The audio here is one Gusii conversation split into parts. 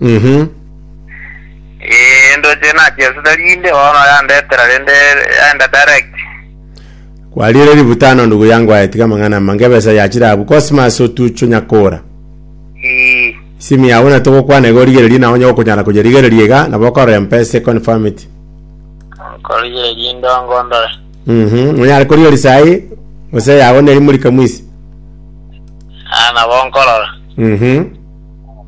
Mhm. Eh, ndoche nachiasete rinde bono yandetera rende yaenda direct. Kwariire ributano ndugu yangu aye tiga amang'ana amange ebesa yachire abwo Cosmas otucho nyakora. Eh, Simu yao na togokwana iga origererie na onye gokonyara koyerigereria iga nabo okorora mpesa e confirm it. korigere rinde ongondore. Mhm. Nonyare korigeri sai gose yago neri muri kamwisi. Ah, nabo nkorora. Mhm.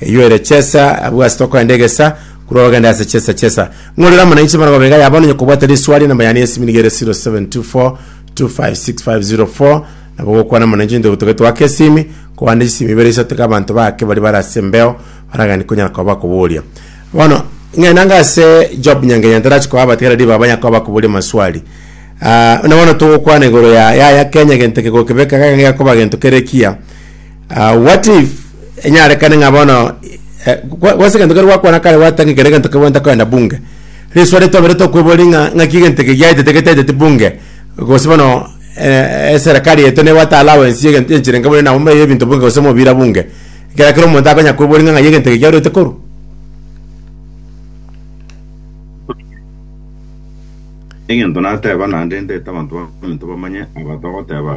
Eyio ere chesa abwo ase tokorenda egesa, korwa ogende ase chesa chesa. Ng'orere amo nainche mara gobenga ya bono onye kobwate riswali enamba yane y'esimi nigo ere 0724256504 nabo gokwana amo nainche onye togetwa ake esimi kobande chisimi ibere isato iga abanto bake baria bare ase embeo baragani konyara koba bakoboria. Bono ng'enanga ase Job Nyangenye ntarachi koa abatigari riba abanya koba bakoboria amaswali. Ah, buna bono togokwana igoro ya yaya Kenya gento kegoke beka geka gekoba gento kere ekiya. Ah, what if enyarekane ng'a bono eh, kwa- kwase egento kero gwakwana kare gwatanga kere egento kebwenta koenda bunge riswari twabere tokwebori ng'a ng'aki egento eke giaetete getaeteti bunge gose bono eh, eserekari yaito nebwate allowance ya egento enchera enke buna nabo mbaye ebinto bunge gose omobira bunge ekero kera omonto akonya kwebori ng'a ng'ai egento eke giarwete korwa egento nateba naende ndete abanto baminto bamanye aba togoteba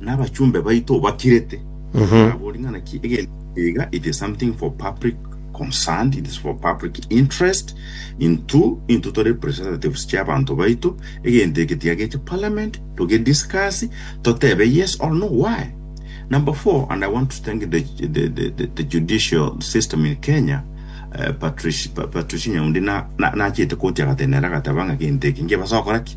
Nabachumbe baito obakirete. Mhm. Nabori ng'a naki egento iga it is something for public concerned, it is for public interest. Intu intu tore representatives chia abanto baito, egento eke tiageche parliament toge discuss totebe yes or no why. Number four, and I want to thank the, the, the, the, the judicial system in Kenya, uh, Patricia, Patricia Nyaundi na, na, nachete koti agatenera agateba ng'a gento eke ngebasa gokora ki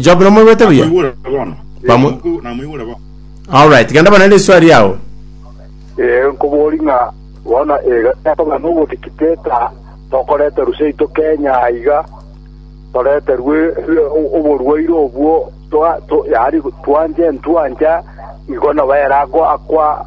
Job nomoigwete buya? Namoigure bono. Eh, Bamwe- Muku, namoigure bono. Alright, genda bana riswali yao. ee nkobori ng'a bono ekogana nogotikiteta tokorete rusia ito kenya aiga toreterwe eh, o- oborwaire obwo twa- to- yaani twanche ntwancha igo nabo ere ako akwa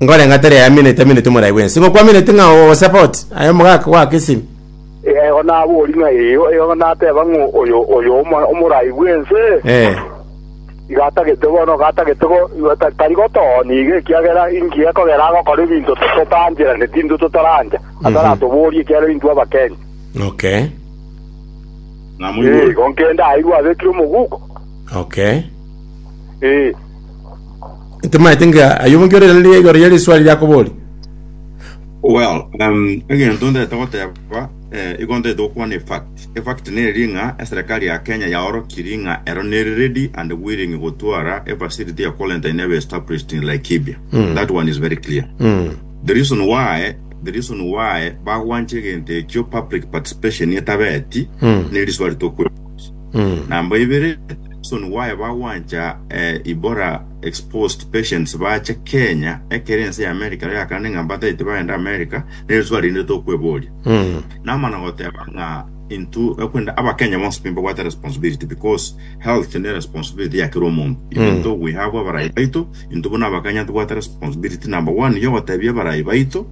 Nkorenga tari ayameneti ameneti omorai bw'ense, ng'o kwameneti ng'a ogosapout aye omogaka goaka esimi? Erio naboria ng'a eyo, eyo nateba ng'a oyo oyo omo- omorai bw'ense, Eh. iga atagete bono, iga atagete go- iga ta- tari gotooni iga, ekiagera inki ekogera agokora ebinto to- totancherane, tintwe totarancha, ataratoborie ekiagera intwe abakenya. Okay. Ng'a Eh, moigwe. igo nkende airwe abekire omoguko. Okay. Eh. Ntimaete ng'a ayio omonto ore nere igoro ya risuari riakoboria. Well, um, egento ntete goteba eh, igo ntete gokwana efact efact neri ng'a eserekari ya kenya yaorokiri ng'a ero neri ready and willing gotwara efacility ya quarantine ebe established in laikibia Mm. that one is very clear Mm. the reason why the reason why bagwanche egento ekio public participation etabeti Mm. neri swali tokwe Mm. Namba ibere, reason why bagwancha eh, ibora exposed patients bache Kenya ekere ense ya America rero yakana ng'a mbataete bagenda America nere swali rinde tokweboria Mm. namana goteba ng'a into ekwenda abakenya bonsi pi mbabwate responsibility because health ne responsibility ya kera omonto even though we have abarayi baito into buna abakenya tubwate responsibility number one yo gotebia abarayi baito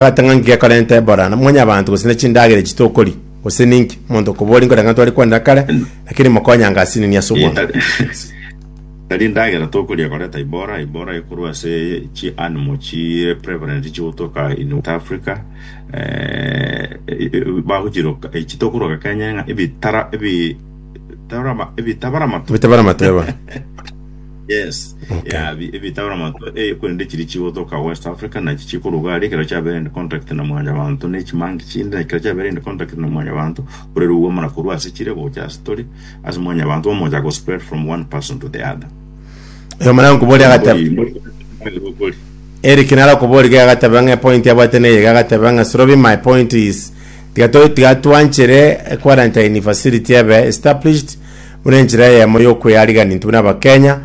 Bwate ng'a nki gekorenta Ebola, na mwanyabanto, gose ne chindagera echi tokori, gose ninki? Omonto okoboria nkore ng'a twari kwanera kare, lakini mokonyange ase enini ase obwango. Tari endagera tokoria ekoreta Ebola, Ebola ekorwa ase chi animal chire prevalent chigotoka in West Africa, eh, bagochiroka, echi tokoroka Kenya ng'a ebitara, ebi, tarama, ebitabara matu. Ebitabara matu, eba. Yes. Okay. Yeah, bi- ebitawara manto eh, kwende chiri chigotoka West Africa na chichikuruga ari kero chabere in contact na mwanya bantu ne chimangi chinde na kero chabere in contact na mwanya bantu ore ruwa mana kuru ase chire gocha ase tori ase mwanya bantu omoja go spread from one person to the other. Oyo mwana nkubori agateba Mbori. Eric nara kubori ga agateba ng'a point abwate neye ga agateba ng'a Sorobi my point is tiga to- tiga twanchere quarantine facility ebe established buna enchera eyemo y'okweariganint buna Abakenya,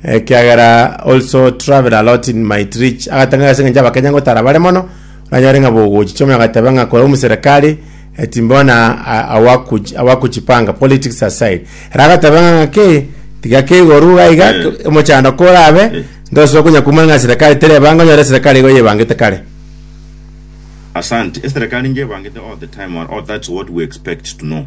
ekiagera also travel a lot in might reach agatanga ase eng'encho Abakenya ngotara bare mono, oranyore ng'a bogochi chioma agateba ng'a kore omuserekari eh, timbona a- awakuch- awakuchipanga politics aside era agateba ng'a ng'aki tiga keigoru iga iga Eh. omochando korabe Eh. ntosobe konya kumana ng'a serekari terebanga onyore serekari igo yebangete kare Asante. Eserekari ngebangete all the time or all that's what we expect to know.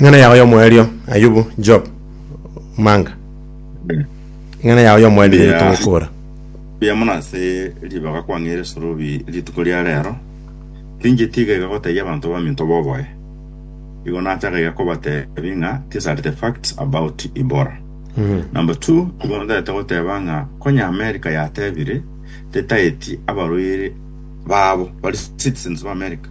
Eng'ana yao y'omoerio, Ayubu, Job, Omanga. Eng'ana yao y'omoerio Mbuya. yetogokora. Mbuya mono ase ribaga kwang'eire Sorobi rituko ria reero. Tinche tiga iga gotebia abanto baminto boboe. Igo nataka iga kobatebia ng'a these are the facts about Ibora. Number two, igo ntaete goteba ng'a konya America yatebire tetaeti abarwaire babo bari citizens ba America.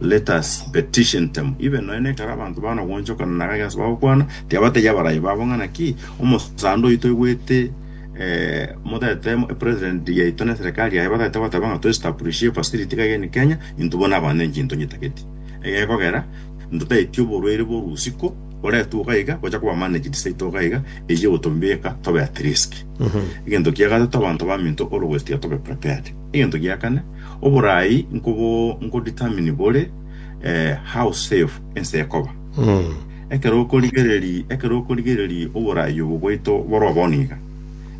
Let us petition them, even nonya nekare abanto bana gwanchokana na gaki ase bagokwana, tiabategi abarai babo ng'a naki omosande oito oigwete eh, motete mo- president yaito na serikali yaye batete goteba ng'a toestablishie facility iga egeni Kenya intwe bono abanto enki ntonyetageti egekogera ntotaeti oborwaire bwa orusiko boretwe iga iga gocha koba managed seito iga iga eywo egotobeka tobe at risk egento kia gatato abanto baminto always tiga tobe prepared egento gia kane Oboraai nkobo nkodetermine bore how safe ense ekoba. Ekero okorigereri ekero okorigereri oboraai obo bwaito boroa bono iga,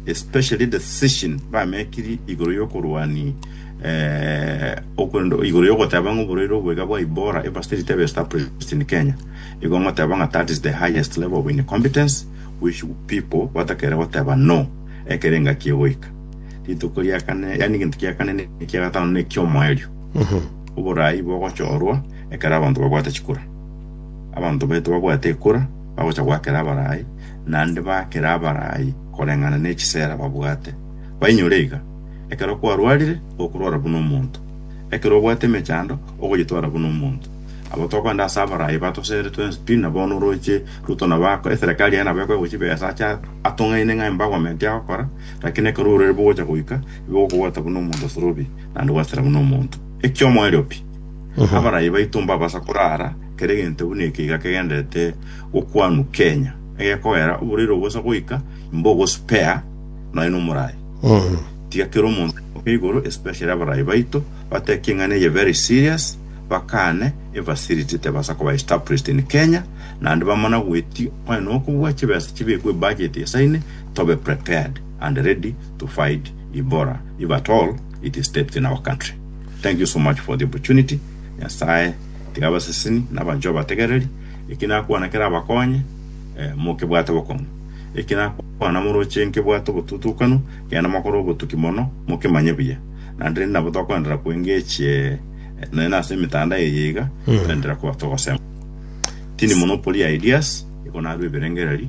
especially decision bamekiri igoro yokorwani okorende igoro yogoteba ng'a oborwaire obo iga bwa Ebola ebe still tebe established in Kenya, igo ngoteba ng'a that is the highest level of incompetence which people batakere goteba no ekero engaki egoika. Rituko ria kane, yani egento kia kane ne kia gatano ne kiomoerio. Oborai bogochorwa ekero abanto babwate chikura. Abanto baito babwate ekura bagocha goakera abarai, naende baakere abarai koreng'ana ne chisera babwate. Bainyore iga, ekero kwarwarire gokorwara buna omonto, ekero obwate emechando ogonyetwara buna omonto. Abo tokogenda ase abarai batosere twensi pi, na bono oroche Ruto nabo ako- eserekari yaye nabo ekoewa chibesa ache atong'aine ng'a embagoment agokora, Lakini ekero orwere bogocha goika, bigokobwata buna omonto osorobi, naende gwasera buna omonto. Eki'omoerio pi! Abarai baito mbabasa korara kera egento buna ekeiga kegenderete gokwanwa kenya, egekogera oboreire obosa goika, imba ogospare nonya nomorai. Tiga kera omonto amoke igoro, especially abarai baito, batebe ki eng'ana eye very serious, bakane efacility tebasa koba established in Kenya, naende bamana goeti, onye nokobua chibesa chibekwe ebudget esaine, tobe prepared and ready to fight ibora if at all it steps in our country. Thank you so much for the opportunity. Nyasaye tiga abaseseni na abanchwa bategereri eki nakwana kera abakonye eh, mokebwate bokong'u eki nakwana moroche nkebwate obotutukanu kenda makore obotuki mono mokemanye buya naende rende nabo tokoendera kwengechie eh, naye nase emitanda eye iga toendera kuba togosema tini monopoly ideas igo narwo ebirengereri